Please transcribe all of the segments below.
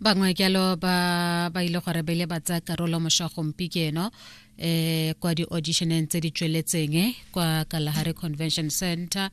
bangwe jalo ba ba ile gore ba ile ba tsaya karolo mošwa gompieno eh kwa di-auditioneng tse di tsweletseng eh, kwa kalahare convention center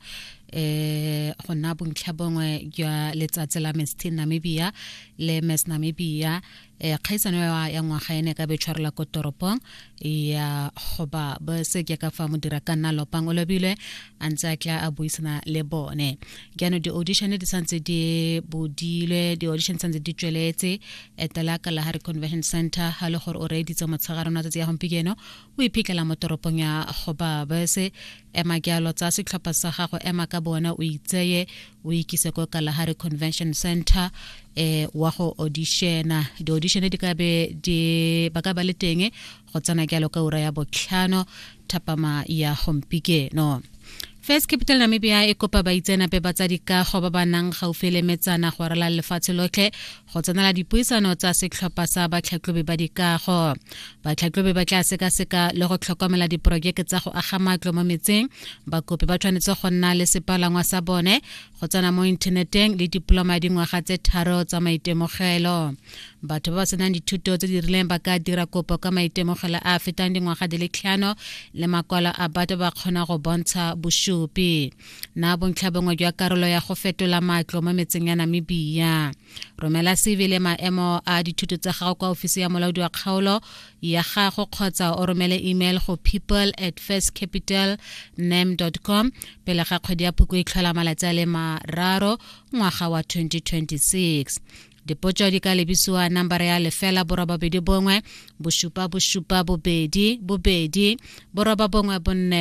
eh go nna bontlha bongwe jwa letsatsi la miss teen namibia le miss namibia eh kgaisano ya ngwaga ene ka betshwarela ko toropong ya goba ba se ke ka fa modira ka nna lopang o lobilwe a ntse a tla a buisana le bone jaanong di-audition di santse di bodilwe di-audition santse di tsweletse etela ka lahare convention center ga le gore o reeditse motshegare ona tsatsi ya gompieno o iphitlhela mo toropong ya goba bese ema jalo tsa setlhopha sa gago ema ka bona o itseye o ikise ko kalahari convention center eh wa go auditiona di-audition di ka be di ba ka ba le teng go tsena jalo ka ura ya botlhano thapama ya gompikeno First Capital Namibia e kopa baitseanape ba tsa dikago ba ba nang gaufi le metsana go rala lefatshe lotlhe go tsenela dipuisano tsa setlhopha sa batlhatlhobi ba dikago batlhatlhobi ba tla sekaseka le go tlhokomela diporojeke tsa go aga matlo mo metseng bakopi ba tshwanetse go nna le sepalangwa sa bone go tsena mo inthaneteng le diploma ya dingwaga tse tharo tsa maitemogelo batho ba ba senang dithuto tse di rileng ba ka dira kopo ka maitemogelo a a fetang dingwaga di le tlhano le makwalo a batho ba kgona go bontsha bosupi na bontlhabongwe jwa karolo ya go fetola matlo mo metseng ya namibia romela cv le maemo a dithuto tsa gago kwa ofisi ya molaodi wa kgaolo ya gago kgotsa o romele email go people at first capital nam com pele ga kgwedi ya phoko e tlhola malatsi a le mararo ngwaga wa 2026 dipotso di ka lebisiwa nambara ya lefela borobabedi bongwe bosupa bosupa bobedi bobedi boroba bongwe bonne